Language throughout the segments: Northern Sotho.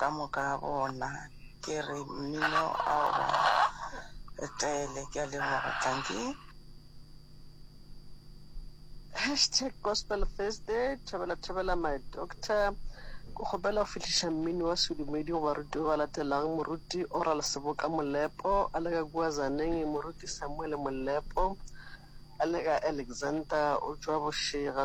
ka moka ga bona ke re mmino ao ba etele ke a leboga tanki hashtag gospel thursday thobela thobela my doctor ko kgopela go fihliša mmini wa sedumedi go baruti ba ba latelang moruti oral seboka molepo a le ka kua zaneng moruti samuele molepo a le ka alexander o tswa bošega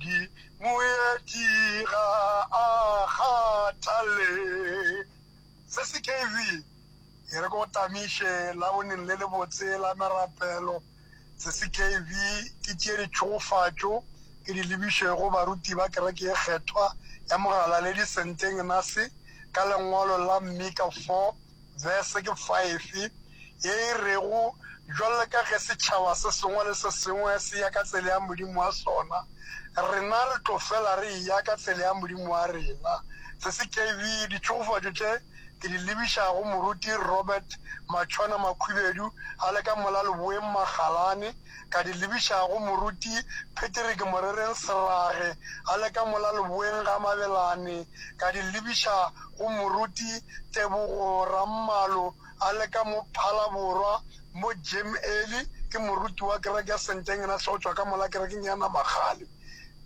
Di moeti ga a kgathale. Se se KV. E re ko tamiše laboneng le lebotse la merapelo. Se se KV. Ke tšee ditšhogofatšo ke di lebiše go baruti ba kereke ye kgethwa ya mogala le disenteng na se ka lengwalo la Mika 4 Verse ke 5, ye e rego, Bjalo ka ge setšhaba se sengwe le se sengwe se ya ka tsela ya modimo wa sona, rena re tlo fela re eya ka tsela ya modimo wa rena. Tscv, Ditšhogofatšo tše ke di lebiša go Moruti Robert Matšhwana Makhwibedu a le ka mola leboeng Magalane, ka di lebiša go Moruti Patrick Morereng Serage a le ka mola leboeng ga Mabelane, ka di lebiša go Moruti Tebogo Rammalo a le ka mo Phalaborwa mo Jim Early ke moruti wa kereke ya Senteng ena hle go tšwa ka mola kerekeng ya Namagale.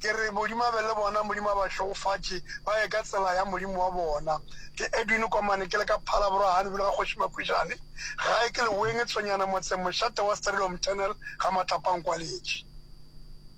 Ke re Modimo a be le bona, Modimo a ba hlogofatše ba ye ka tsela ya Modimo wa bona. Ke Edwin Komane ke le ka Phalaborwa gane bjalo ga Kgoši Makwejane gae ke Leweng Tshwenyana motseng Mošate wa Sterilo Mthenel ga Matlapankwaletši.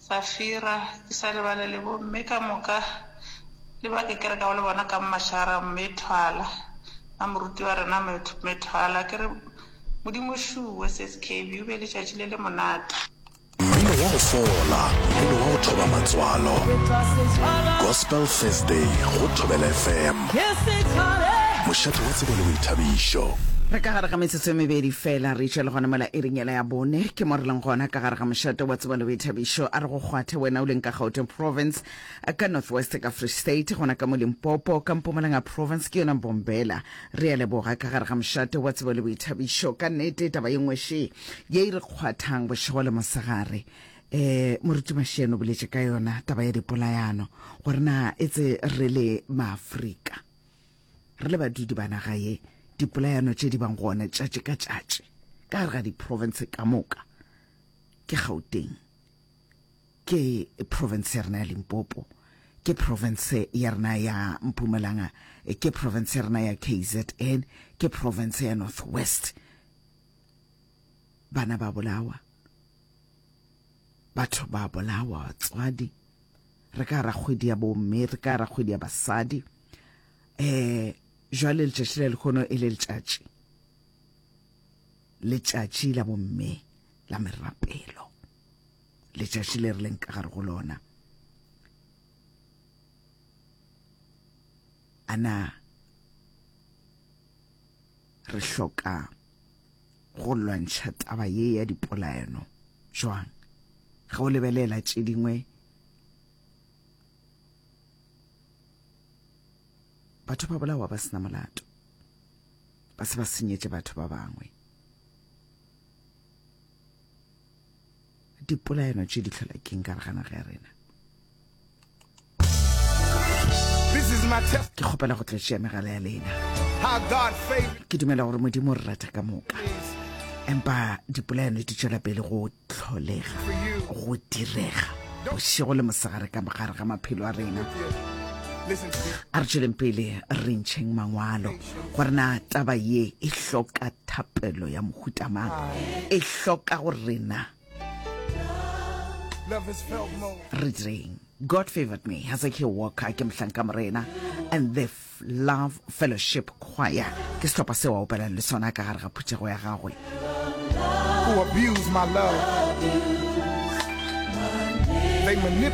Safira, Ke sa lebale le bomme ka moka le ba ke kerekago le bona ka mashara, Mme Thwala, na moruti wa rena Mme Thwala. Ke re, Modimo šuwe, Sskb, o be letšatši le le monate. Mmino wa go fola, mmino wa go thoba matswalo. Gospel Thursday go Thobela FM, mošate wa tsebo le boithabišo. Re ka gare ga metsotso e mebedi fela re išwa le gona mola iring ya. Taba ya bone, ke mo re leng gona ka gare ga mošate wa tseba le boithabišo. A re go kgwathe wena o leng ka Gauteng Province, ka North West ka Free State, gona ka mo Limpopo ka Mpumalanga Province ke yona Mbombela. Re a leboga ka gare ga mošate wa tsebo le boithabišo. Ka nnete taba ye nngwe še ye e re kgwathang bošego le mosegare. Um Moruti Masheno o boletše ka yona taba ya dipolayano gore na etse re le Maafrika. re le badudi ba naga ye dipolayano tše di bang gona tšatši ka tšatši ka gare ga diprovince ka moka ke gauteng ke province ya rena ya limpopo ke province ya rena ya mpumalanga ke province ya rena ya kzn ke province ya north west bana ba bolawa batho ba bolawa batswadi re ka ra kgwedi ya bomme re ka ra kgwedi ya basadi eh jwale letšatši le lekgono e le letšatši letšatši la bomme la merapelo letšatši le re leng ka gare go lona ana re hloka go lwantšha taba ye ya dipolaeno jwang? Ge o lebelela tše dingwe batho ba bolawa ba sena molato ba se ba senyetše batho ba bangwe dipolaeno tše di tlhola keng ka re ga naga ya rena ke kgopela go tletšea megala ya lena ke dumela gore modimo re rata ka moka empa dipolaeno di tšwela pele go tlholega go direga bošego le mosegare ka mogare ga maphelo a rena a re tšweleng pele re ntšheng mangwalo gore na taba ye e hloka thapelo ya mohuta mang e hloka go rena re direng god favored me hezekiel walker ke mohlanka morena and the love fellowship choir ke sehlopha seo a opelang le sona ka gare ga phuthego ya gagwe They